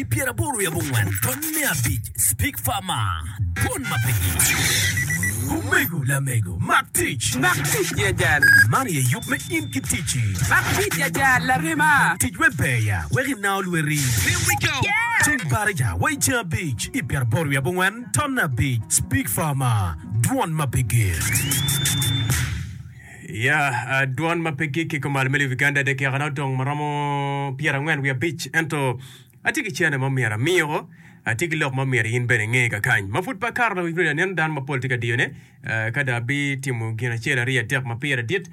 I pyeraboro i abongwen taun me abic, Speke Farmer, Bon ma pe gico. Omego lamego, mak tic! Mak tic jajal! Man aye yub me in ki ticci. Mak tic jajal, larema! Tic wek ber ya, wek inao lweti. Here we go! Ceng Baraja wa i ceng abic i pyeraboro i abongwen taun me abic, Speke Farmer, Dwon ma pe gir. Ya, dwon ma pe gikki kumal me lobo Uganda, dakikana odong ma romo pyerangwen wiye abic, ento atye ki cene ma myero amiyoko, atye ki lok ma myero in bene inge kakany. Ma pud pe akato lawik rudi aneno dano mapol tye ka diyone, ka dong abi timo gin acel aryo adek ma pire dit,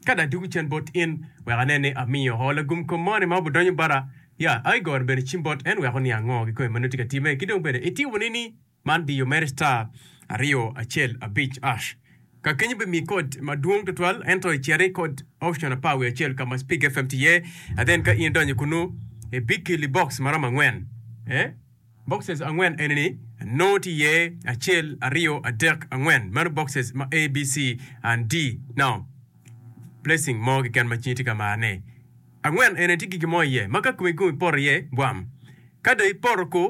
ka dong adugu cen bot in wek anen ni amiyo ho lagum kom moni ma obudonyo bota, ya, aigoro bene cim bot en wek oniang ngo kikome ma nongo tye ka time, ki dong bene itimo nini? Man diyo mere star aryo acel abic ash. Ka kenyo bi mi kod ma dwong tutwal ento icer i kod option apar wiye acel ka ma speak FM ti iye and then ka in idonyo kunu i bi kili box ma romo angwen eh boxes angwen eni ni nongo ti iye acel aryo adek angwen meno boxes ma ABC and D now blessing mo keken ma cingi ti ka mar ne angwen eni ti gigi mo iye ma ka kome gung ipoto iye bwam ka do ipoto ku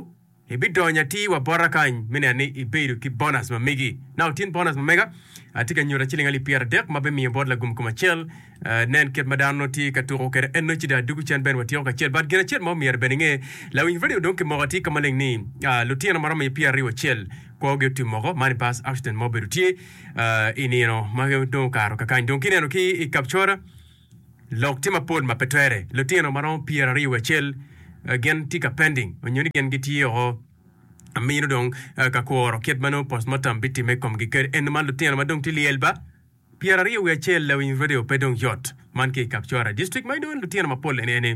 Ibidonyo atir wa bota kany me neno ni ibedo ki bonus ma megi. Now tin bonus ma mega, atye ka nyuta ciling alip pyera dek ma bimiyo bot lagum kom acel. Uh, nen kit ma dano nongo tye ka tuko kwede eno cida dugu cen bene watyeko kacel. But gin acel ma omyero bene inge, lawiny radio dong kimoko atir ka maleng ni, uh, lutino maromo i pyera aryo acel kwogi otim moko, man i bus accident ma obedo tye, uh, i nino ma dong okato kakany. Dong kineno ki i Kapchora, Lok tye mapol ma pe twere. Lutino ma romo pyer aryo wiye acel gin tye ka pending onyo ni gin gitye oko amino dong ka kworo kit ma nongo postmortem bitimme i komgi kadi eno ma lutino ma dong tye lyel ba pyer aryo wiye acel la winy radio pe dong yot. Man ki i Kapchorwa district ma inongo ni lutino mapol eni eni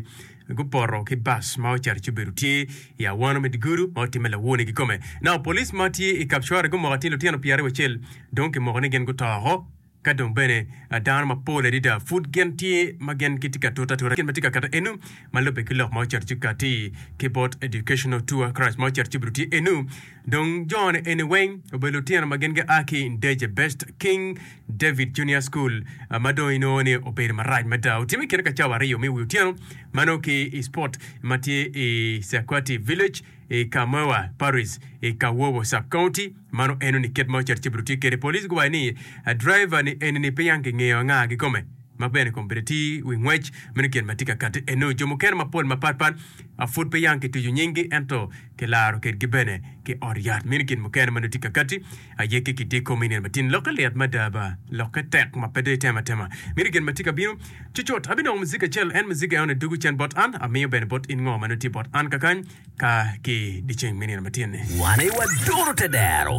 gupoto ki bus ma ocito ci obedo tye i awano me Digudu ma otimme lawone kikome. Nao police ma tye i Kapchorwa gumoko atir lutino pyer aryo wiye acel dong kimoko ni gin guto oko. Ka dong bene dano mapol adada pud gin tye ma gin gitye ka tute atuta gin ma tye ka kato enu ma lubbe ki lok ma ocito ci kati ki bot educational tour karac ma ocito ci obedo tye enu dong jone eni weng obedo lutino ma gin gia ki Ndege Best King David Junior School ma dong inongo ni obedo marac mada otime kine ka cawa aryo me wi otyeno ma nongo ki i spot ma tye i Sequati Village i Kamoewa Parish i Kawowo Sub-County Mano eno ni kit ma ocat cibito tye kede. Police guwayo ni driver ni eni ni peyang ki ngeyo anga gikome ma bene kom bene ti wi ngwec meno tyen ma tye ka kati eno. Jo mukene mapol mapat pat a pud peyang ki tucu nying gi ento ki laro ked gi bene ki ot yat meno tyen mukene ma nongo tye ka kati aye ki ki di kom inen matin lokke lit mada ba lokke tek ma pe do itemo atema meno tyen ma tye ka bino cucut. Abinongo muziga acel en muziga eno ni dugu cen bot an amiyo bene bot in ngo ma nongo tye bot an kakany. ka ki dyeceng me nino matyen-ni. Wan aye waduro te dero.